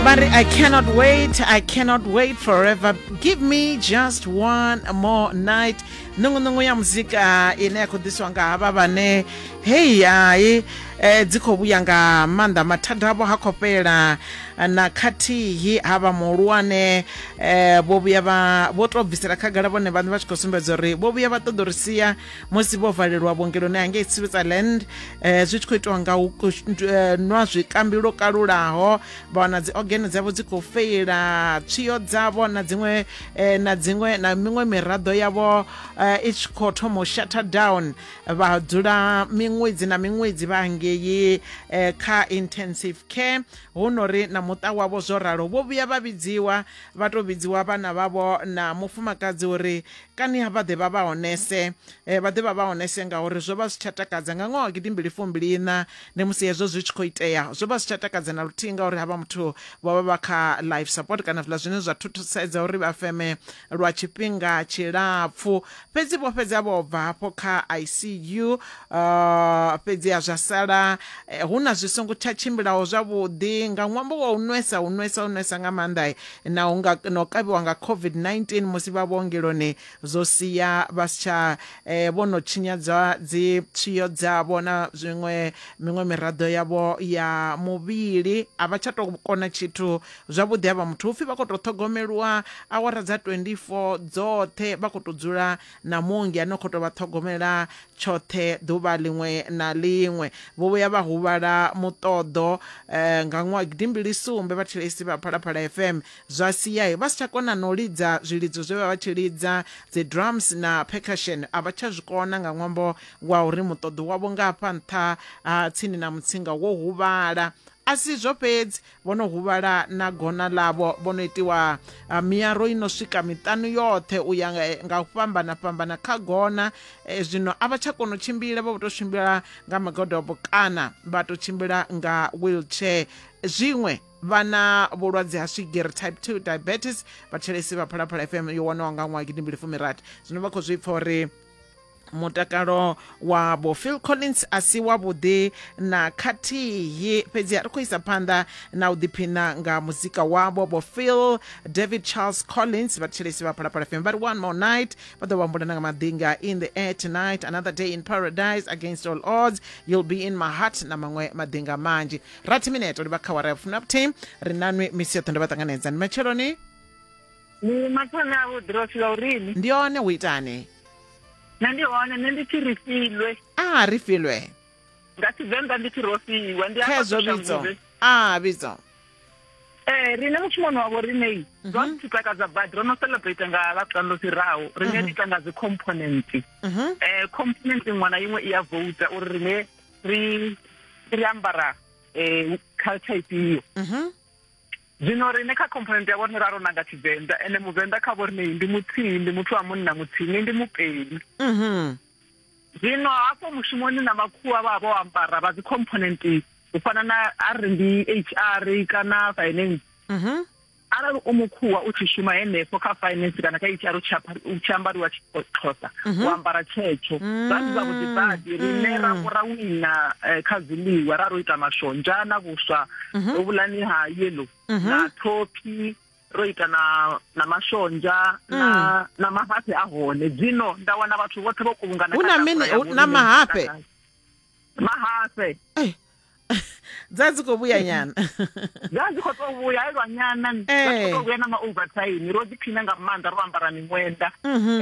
But I cannot wait, I cannot wait forever. Give me just one more night. Nungunungu ya muzika ine ya khou ḓiswa nga havha vhane hei hai eh, dzi khou vhuya nga maanḓa mathada avho ha khou fhela na khathihi ha vha muhulwane eh, vho vhuya vha vho tou bvisela khagala vhone vhaṋe vha tshi khou sumbedza uri vho vhuya vha ṱoḓa uri sia musi vho valelwa vhuongeloni hangei switzerland eh, zwi tshi khou itiwa nga u eh, nwa zwikambi lwo kalulaho vha wana dzi organe dzavho dzi khou feila tswiyo dzavho na dziṅwe eh, na dziṅwe na miṅwe miraḓo yavho eh, i tshi khou thoma u shutter down vha dzula miṅwedzi na miṅwedzi vha ngei eh, kha intensive care hu no ri na muṱa wavho zwo ralo vho vhuya vha vhidziwa vha tou vhidziwa vhana vhavho na mufumakadzi uri kani ha vha ḓe vha vha honese eh, vha ḓe vha vha honese ngauri zwo vha zwi tsha takadza nga ṅwaha wa gidimbili fumbili ina ndi musi hezwo zwi tshi khou itea zwo vha zwi tsha takadza na luthihi ngauri havha muthu vho vha vha kha life support kana zwiḽa zwine zwa thuthusedza uri vha feme lwa tshifhinga tshilapfu fhedzi vho fhedza vho bva hafho kha icu uh, eh, fhedzi ha zwa sala eh, hu na zwi songo tsha tshimbilaho zwavhuḓi nga ṅwambo wa u nwesa u nwesa u nwesa nga maanḓa na u nga, na u kavhiwa nga COVID-19 musi vha vhuongeloni zwo sia vha si tsha eh, vho no tshinyadzwa dzi tswiyo dzavho na zwiṅwe miṅwe miraḓo yavho ya muvhili a vha tsha tou kona tshithu zwavhuḓi ha vha muthu upfhi vha khou tou ṱhogomelwa awara dza 24 dzoṱhe vha khou tou dzula na muongi a no khou tou vha ṱhogomela tshoṱhe ḓuvha ḽiṅwe na ḽiṅwe. Vho vhuya vha huvhala muṱoḓo nga ṅwaha gidi mbili sumbe vhathetshelesi vha Phalaphala FM, zwa sia vha si tsha kona na u lidza zwilidzo zwe vha vha tshi lidza, dzi drums na percussion a vha tsha zwi kona nga ṅwambo wa uri muṱoḓo wavho nga hafha nṱha ha tsini na mutsinga wo huvhala. A si izwo fhedzi, Vho no huvhala na gona ḽavho, vho no itiwa miaro i no swika miṱanu yoṱhe u ya nga u fhambana fhambana kha gona. E, zwino a vha tsha kona u tshimbila, vha vho tou tshimbila nga magodobo kana vha tou tshimbila nga wheelchair. Zwiṅwe vha na vhulwadze ha swigiri type 2 diabetes. Vhathetshelesi vha Phalaphala FM yo wanaho nga ṅwaha gidimbili fumirathi zwino vha khou zwi pfa uri mutakalo wa vho phil collins a si wavhuḓi na khathihi fhedzi a ri khou isa phanḓa na u ḓiphina nga muzika wavho vho phil david charles collins vhathetshelesi vha phalaphala fm vha ri one more night vha ḓo vhambula na nga maḓinga in the air tonight another day in paradise against all odds you'll be in my heart na maṅwe maḓinga manzhi rathi mineto livha kha wara ya fumi na vhuthihi ri nanwi misi yoṱhe ndo vha ṱanganedza ndi matsheloni ni mathole a vhuḓi ro fhiwa urini ndi one u itani nṋe ndi hone nṋe ndi tshi ri filwe a ri filwe nga tshivenḓa ndi tshi ro fiwa ndi khezwo vhidzo a vhidzo Eh rine mushumoni wavho rinei mhm. zwa ri takadza badi ro no celebrate nga ḽavhuṱanu ḽo fhiraho rine mhm. ri ita nga dzi component mhm. eh component iṅwe na iṅwe i ya vouta uri rine ri ri ambara eh culture ifhio Zwino riṋe kha khomphonenthe ya vhoriṋe ra ro nanga Tshivenḓa, ene Muvenḓa kha vhoriṋe ndi muthihi, ndi muthu wa munna muthihi, ni ndi Mupedi. Mhm. Zwino hafho mushumoni na makhuwa vha vho ambara vha dzi khomphonenthe u fana na a ri ndi HR kana finance. Mhm. Arali u mukhuwa u tshi shuma henefho kha finance kana kha HR u tshi apha- u tshi ambariwa Xhosa, u ambara tshetsho. Zwa ndi zwavhuḓi badi, riṋe ra vho ra wina eh, kha zwiḽiwa, ra ro ita mashonzha na vhuswa. mhm. ro vhulani ha yellow mhm. na thophi ro ita na na mashonzha mm. na na mahafhe a hone dzino nda wana vhathu vhoṱhe vho kuvhungana hu na mini na mahafhe mahafhe eh. dza dzi khou vhuya nyana dza dzi khou tou vhuya e lwa nyana dza khou tou eh. vhuya na ma-overtime ro ḓiphina nga maanḓa ro ambara miṅwenda um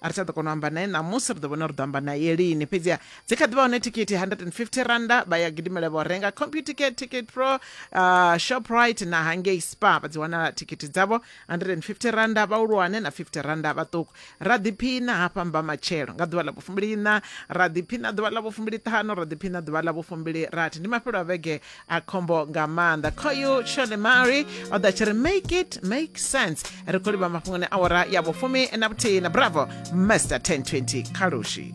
a ri tsha ḓo kona u amba naye ṋamusi ri ḓo vhona uri ḓo amba naye lini fhedziha dzi kha ḓi vha hone thikhithi 150 randa vha ya gidimela vho renga computicket ticket pro uh, shoprite na hangei spa vha dzi wana thikhithi dzavho 150 randa vhahulwane na 50 randa vhaṱuku ra ḓiphina hafha mba matshelo nga ḓuvha ḽa vhufumbiliiṋa ra ḓiphina ḓuvha ḽa vhufumbiliṱhanu ra ḓiphina ḓuvha ḽa vhufumbili rathi ndi mafhelo a vhege a khombo nga maanḓa khoyu shone mary o ḓa tshi ri make it make sense ri khou livha mafhungoni awara ya vhufumi na vhuthihi na bravo master 1020 khalushi